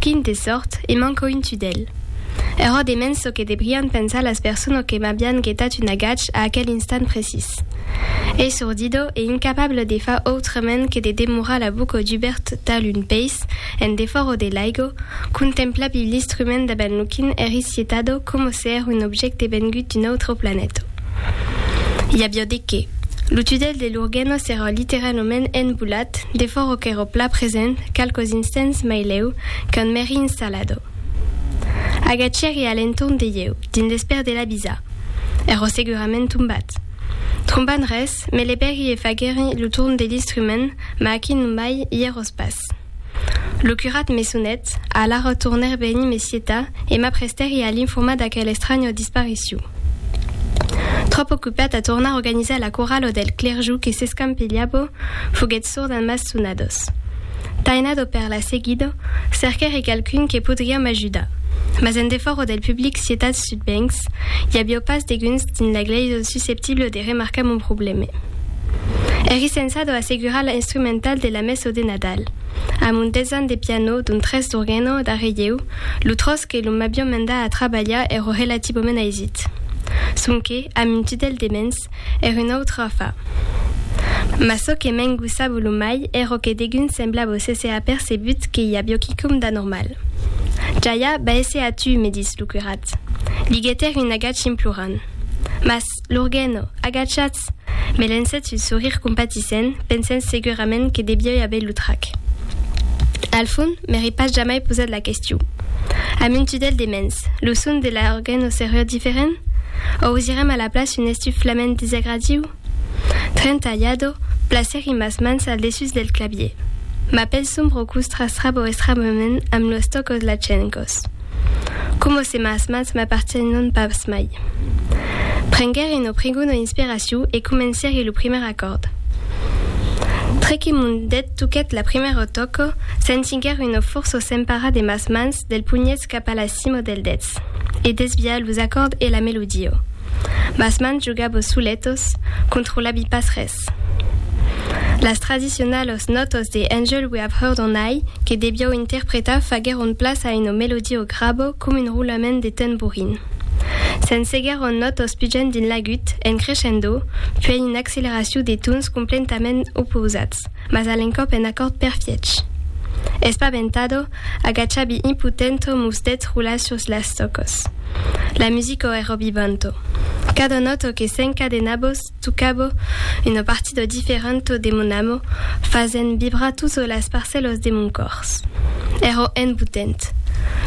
Quin de sòrt, e manco un tudèl. Era de mens çò que debrián pensar las personas que m'avián getat un agach a aquel instant precís. Esordido e incapable de far autrament que de demorar la boca dubèrt tal un peis en defòra de l'aigo, contemplavi l'instrument davant lo quin eri sietado coma se èra un objècte vengut d'un autre planeta. I aviá de qué. Lo tudèl de Lurguèna s'èra literalament enbolat, defòra qu'èra plan present, qualques instants mai lèu, qu'un mèri installado. Agachèri a l'entorn de ieu, dins l'espèr de l'avisar. Èra segurament tombat. Trombant res, me levèri e faguèri lo torn de l'instrument, ma aquí non mai i èros pas. Lo curat me sonèt, alara tornèr venir me cietar e m'aprestèri a l'informar d'aquel estranya dispariciu. Tròp ocupat a tornar organizar la corala del clerjou que s'escampilhava, foguèt sord a mas sonadors. Tainado per la seguida, cerquèri qualqu'un que podriá m'ajudar, mas en defòra del public cietat sud Bencs, i aviá pas deguns dins la glèisa susceptible de remarcar mon problème. Eri sensado a segurar la instrumental de la messo de Nadal, amb un desan de piano, d'un tres d'orgueno, darrè ieu, lo tròç que lo m'avion mendat a trabalhar ero relativament aisit. Sonque, amb un tudèl de mens, èr un autre afar. Mas çò que m'engossava lo mai èro que degun semblava s'èsser apercebut que i avió quicòm d'anormal. Jaja, baisse a tu, me dís lo curat. Li getèri un agach implorant. Mas. L'Urgeno, agachatz! me lencèt un sorir compatissent, pensent segurament que deviái aver lo trac. Al fond, m'èri pas jamai posat la question. Amb un tudèl de mens, lo son de l'Urgeno seriá diferent? O ausirem a la place un estuf flament desagradiu? Trentailhado, placèri mas mans al dessús del clavier. Ma pèl sombra o costra strabo estramament amb los tòcos lachencos. Coma se mas mans m'apartiénon pas mai. Prenguère un oprigon o inspiraciu e comencère lo primièr acòrd. Tre que mon dèt toquèt la primièra o tòco, sentiguère un ofòrço s'emparar de mas mans, del punhets cap a la cimo del dets, e desviar los acòrd e la melodia. Mas mans jogabo soletos, controlabi pas res. Louis. Las tradicionalos nòtos de Angel We Have Heard On High, que devió interpretar, faguèron plaç a una melodia o grabo com un roulament de tamborin. Se'n seguèron nòtos pujant dins l'agut, en crescendo, puèi una acceleracion de tons complentament opausats, mas a l'encòp en acòrd perfièch. Espaventado, agachabi impotento mos dètz roular sus las tòcos. La musica èra vivanta. Cada nòta que s'encadenabos, Tocabo una partida diferenta de mon amo, fasent vibrar totas las parcèlas de mon còrs. Èra embotent.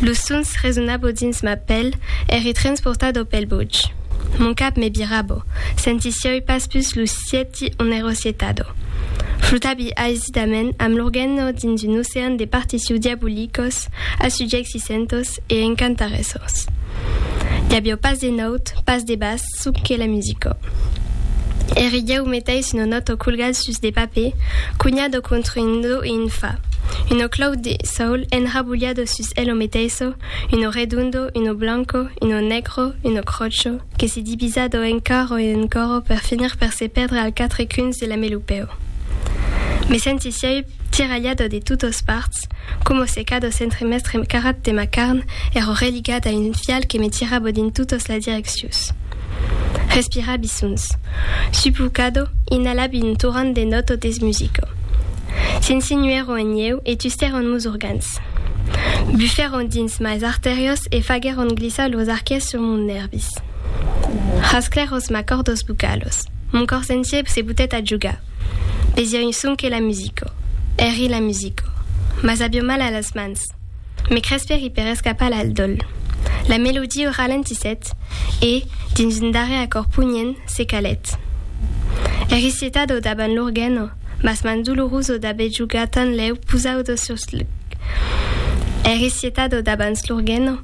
Los sons resonava dins ma pèl, èri transportada pel botge. Mon cap me virava, sentissiái pas pus lo sièti ont èra sietada. Flotavi aisidament amb l'organa dins un ocean de partitions diabolicas, assugiècissentàs e encantaressas. I aviá pas de naut, pas de bas, çò qu'es la musica. Ère ieu meteis un onoto colgat sus de papè, cunhat o contra un do e un fa, un o clau de saul enrabolhado sus el o meteiso, un o redondo, un o blanco, un o negro, un o crocho, que se divisa do encaro e encoro per finir per se pèrdre al quatre cuns de la melopèu. Me sentís ieu tiralhat o de totos parts, Est, como se cado centre mestre carat de ma carn, ero religat a un fial que me tirabo dins totos las direccius. Respirabi sons. Supo cado, inalabi un torrent de noto des musico. S'insinuèron en ieu e tustèron mos organs. Bufèron dins mas artèrios e faguèron glissar lors arquets sur mons nèrvis. Rasclèros mas cordos bucalos. Mon cors entier se butèt a jogar. Besiògn sonque la musica. Eri la musica. Mas aviò mal a las mans. Me crespèri per escapar al dòl. La melodia ralentissèt e, dins un darrèr acòrd pugnent, se calèt. Eri sietada davant l'organa, mas mans dolorusa d'aver jogat tanlèu posauda sus l'. Eri sietada davant l'organa.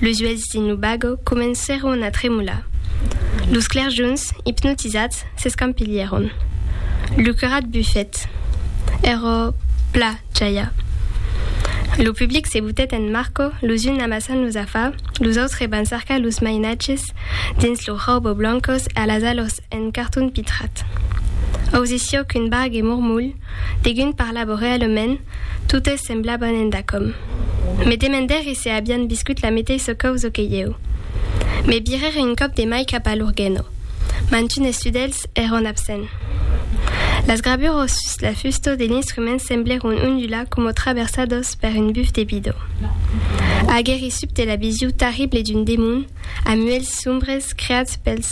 Los uelhs dins lo bago comencèron a tremolar. Los clerjons, ipnotizats, s'escampilhèron. Lo curat bufèt. Èrò pla jaia. Lo public se butèt en Marco, los uns amassant los afar, los autres van cercar los mainatges dins los rauboblancos e a las alas En carton pitrat. Ausissió qu'un barg e Murmulh, degun parlava realement, totes semblavan endacòm. Me demendèri se avián viscut la meteissa causa que ieu. Me virèri un còp de mai cap a Lurgheno. Mantunes sudèls èran absents. Las gravuras sus la fusta de l'instrument semblèron ondular coma traversadas per un buf de bidó. Aguèri subte la vision tarrible d'un demon, a muelhs sombres creats pels.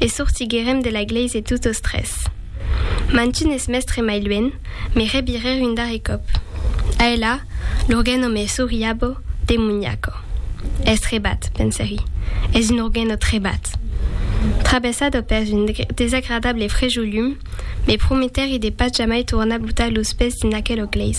e sortiguèrem de la glèise totos tres. Mantun es mèstre mai luènh, me rebirèr un darrèr còp. Aelà, l'organo me souriabo, demoniaco. Es trebat, pensèri, es un organo trebat! Traversado pèrs un desagradable frejolum, me prometèri de pas jamai tornar botar los pès dins aquela glèisa.